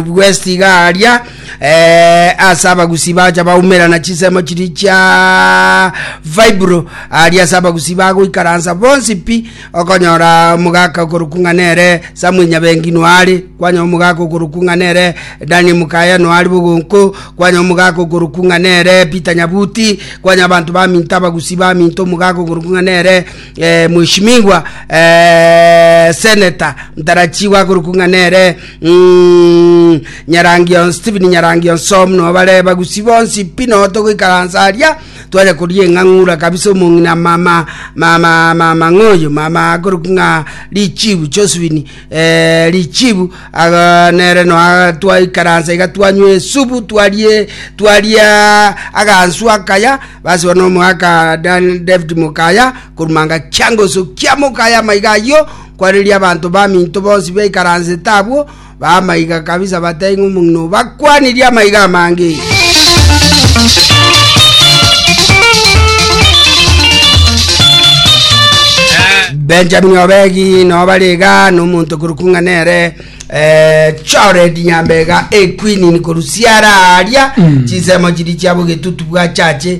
bw'esitiga aria eh, ase abagusi bacha baumerana chisemo chiri chia fibro aria ase abagusi bagoikaransa bonsi pi okonyora omogaka okorokwa ng'a nere samwe nyabengi noare kwanya omogaka okorokwa ng'a nere dani mukaya noare bogonko kwanya omogaka okorokwa ng'a nere peter nyabuti kwanya abanto baminto abagusi baminto omogaka okorokwa ng'a nere eh, mweshimigwa eh, seneta ntarachiwa akorokwa ng'a nere Umm, Nyarangion, Stephen Nyarangion so muna obare bagusi bonsi pi no togoikaransa aria tware koria eng'ang'ura kabisa omong'ina mama mama mama ng'oyo mama akorokwa ng'a richibu Josephine eh, richibu aga nere no aga twaikaransa iga twanywa esubu twarie twaria agansu akaya basi bono omoaka Dan David Mokaya korumanga kiangoso kia Mokaya maiga ayio Kwa riria abanto baminto bonsi baikaransete abwo, b'amaiga kabisa bateba ng'a omong'ina oo bakwanirie amaiga amange. Benjamini obegi nao bare iga na omonto korwa kung'a nere eh, Jored Nyambega ekwinini korwa siara aria chinsemo chiria chiabo getutu bwa chache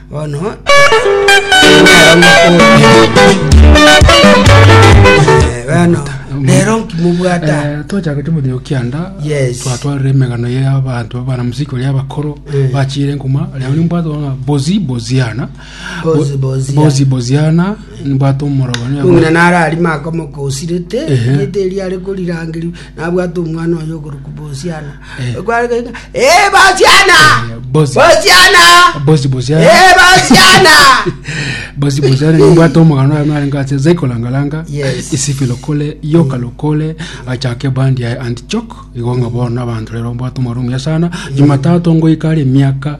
Bono Eh, bono rero nkimobwata Eh, twachaka chomothigo kianda Yes. twatwarire emegano y'abanto abana musiki oria abakoro Eh. bachire nkuma rero nimbwate ona bozi boziana Bozi Boziana. bozi boziana nimbwate omorogani kung'ina narari makomokosirete Ehe. gete eria are korirangeria nabwate omwana oyo ogoruku bosiana Gwaregeire, "Eh, basiana! Bosi. Basiana! bosi bosi are- Eh, basiana! bosi bosi are nimbwate omogano oyo narenge ase zaiko langalanga Yes. isifi lokole yoka lokole achake bandi ya antichok igo ng'a bono abanto rero mbwate omogano omuyasana jumatatu ngoika are emiaka